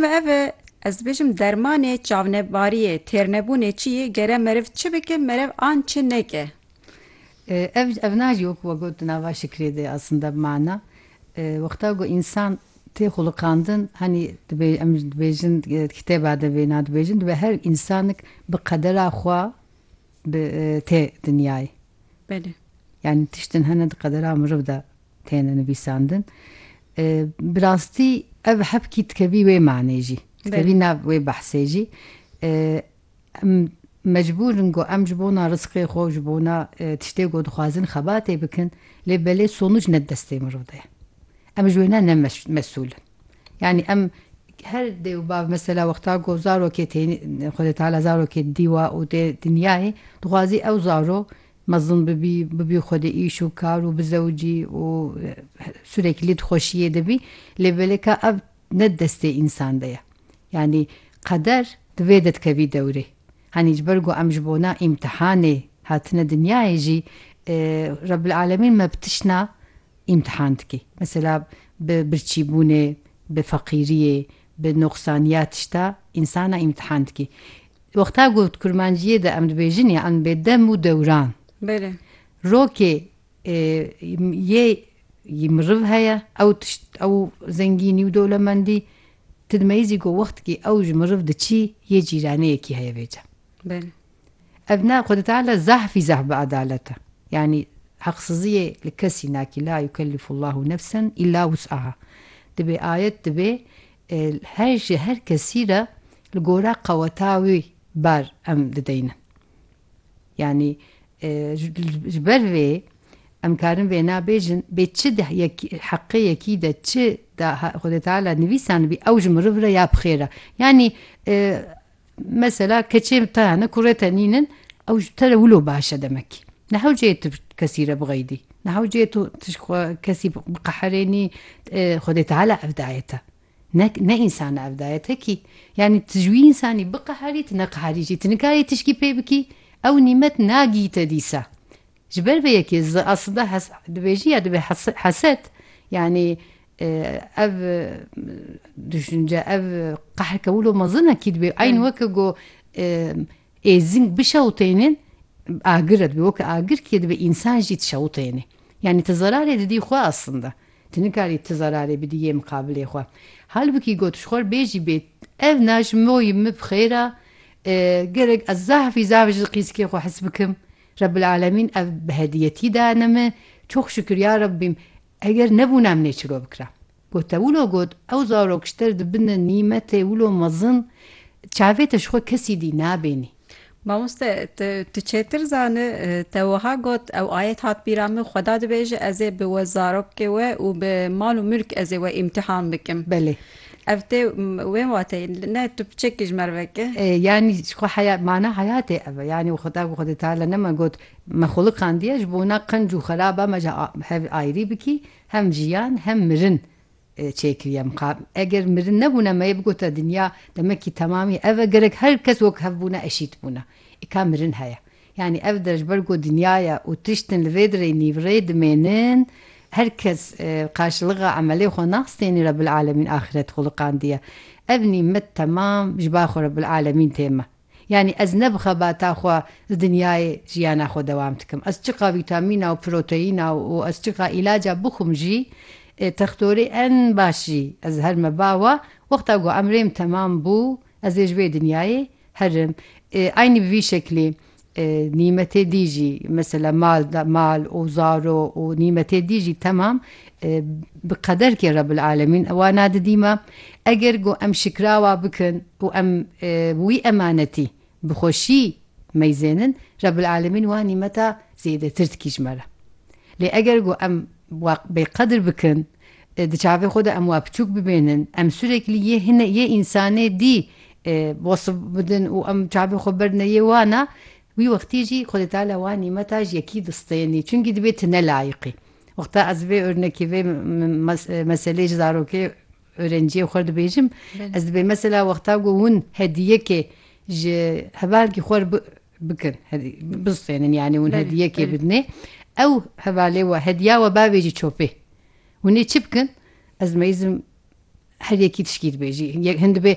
Ev e ez dibêjim dermanê çavnebariyê, têrnebûnê çi yê, gere meriv çi bike, meriv an çi neke. Ev ev nacî wek we got di nava Şikrê de aslında bi mana wexta ku însan tê xulukandin hanî dibê em jî dibêjin kitêba de vêna dibêjin dibe her însanik bi qedera xwe bi tê dinyayê. Belê. Yanî tiştin hene di qedera miriv de. têne nivîsandin. Bi rastî ev hevkî dikevî wê manê jî, dikevî nav wê behsê jî. Em mecbûr in ku em ji bona rizqê xwe, ji bona tiştê ku dixwazin xebatê bikin, lê belê sonuc ne di destê mirov de ye. Em ji wê ne ne mesûl in. Yanî em her dê û bav mesela wexta ku zarokê têne, Xwedê Teala zarokê dîwa û tê dinyayê, dixwazî ew zarok Mezin bibî, bibî xwe di îş û kar û bizewicî û sûrekî lê dixweşiyê de bî lê belê ka ev ne di destê însan de ye. Yanî qeder di vê de dikevî dewrê. Hanî ji ber ku em ji bona îmtihanê hatine dinyayê jî Rebbil Alemîn me bi tişna îmtihan dike. Mesela bi birçîbûnê, bi feqîriyê, bi noqsaniya tişta însana îmtihan dike. Wexta ku di kurmanciyê de em dibêjin ya em dibê dem û dewran. Belê. Rokê yê yê miriv heye, ew tişt ew zengînî û dewlemendî ti dimeyîzî ku wextkî ew ji miriv diçî yê cîraneyekî heye vêca. Belê. Ev ne Xwedî Teala zahf fî zahf bi adalet e. Yanî heqsiziyê li kesî nakî la yukellifullahu nefsen îlla wus'aha. Dibê ayet dibê Her ji her kesî re li gora qeweta wî bar em dideynin. Yanî ji ber vê em karin vêna bêjin bê çi di heqê yekî de çi di Xwedê Teala nivîsanibî ew ji miriv re ya bi xêr e. Yanî Mesela keçê te hene, kurê te nînin, ew ji te re wilo baş e demekî. Ne hewceyê tu kesî re bixeydî. Ne hewceyê tu tişt xwe kesî biqeherênî. Xwedê Teala ev daye te. Ne ne însan e ev daye te kî. Yanî tu ji wî însanî biqeherî, tu neqeherî jî. Tu nikarî tişkî pê bikî. Ew nîmet nagî te dîsa. Ji ber vê yekê zi aslda hes dibêjî ya divê hes heset yanî ev duşince ev qehrke wilo mezin e kî dibê eyn weke go êzing bişewtênên agir e dibê weke agir kî dibê însan jî dişewtênê. Yanî ti zerarê didî xwe aslda. Ti nikarî ti zerarê bidî yê miqabilê xwe. Halbikî go tu ji xwe re bêjî bê ev na ji min wî min bi xêr a gerek ez zahfî zaf ji qîskê xwe hes bikim. Rebbil Alemîn ev bi hediyetî dayene min, çox şukir ya Rebbîm, eger nebûna min ê çilo bikira. Gote wilo got, ew zarok ji te dibine nîmetê wilo mezin, çavê te ji xwe kesî dî nabênî. Mamoste, tu çêtir zani, te wiha got, ew ayet hat bîra min, Xweda dibêje, ez ê bi we zarokê we û bi mal û mulk ez ê we îmtîhan bikim. Belê. Ev tê wê wateyê ne tu piçekî ji mervek e. Yanî xwe heya mana heyatê ev e. Yanî Xweda ku Xwedê teala ne me got me xwilikandiye ji bona qenc û xeraba me ji hev ayrî bikî, hem jiyan hem mirin çêkiriye min. Ka eger mirin nebûne me yê bigota dinya demekî temamî ev e, gerek her kes wek hev bûna eşît bûna. Î ka mirin heye. Yanî ev der ji ber ku dinya ye û tiştên li vê dirê nîvrê dimênin, her kes qarşiliqa emelê xwe nas tenê Rebbil Alemîn axiret xwiliqandiye. Ev nîmet temam ji bar xwe Rebbil Alemîn tê me. Yanî ez ne bi xebata xwe li dinyayê jiyana xwe dewam dikim. Ez çiqa vîtamîna û proteyîna û ez çiqa îlaca bixwim jî, textorê en baş jî ez her me ba wa, wexta ku emrêm temam bû, ez ê ji vê dinyayê Herim, Eynî bi vî şeklî nîmetê dî jî mesela mal da mal û zaro û nîmetê dî jî temam bi qederkê Rebil Alemîn ewa nadidîme. Eger ku em şikrawa bikin û em wî emanetî bi xweşî meyzênin Rebil Alemîn wan nîmeta zêdetir dikî ji me re. Lê eger ku em wa bêqedir bikin Di çavê xwe de em wa piçûk bibêhnin, em sûrekli yê hine yê însanê dî wasf bidin û em çavê xwe berdine yê wan a, wî wextî jî Xwedê Teala wan nîmeta ji yekî distênî, çimkî dibê tu ne layiqî. Wexta ez vê ornekê vê meselê ji zarokê orenciyê xwe re dibêjim, ez dibê mesela wexta ku hûn hediyekê ji hevalkî xwe re bi bikin hedî bistênin yanî hûn hediyekê bidinê ew hevalê we hediya we bavê jî çopê hûnê çi bikin ez meyizim her yekî tişkî dibêjî hin dibê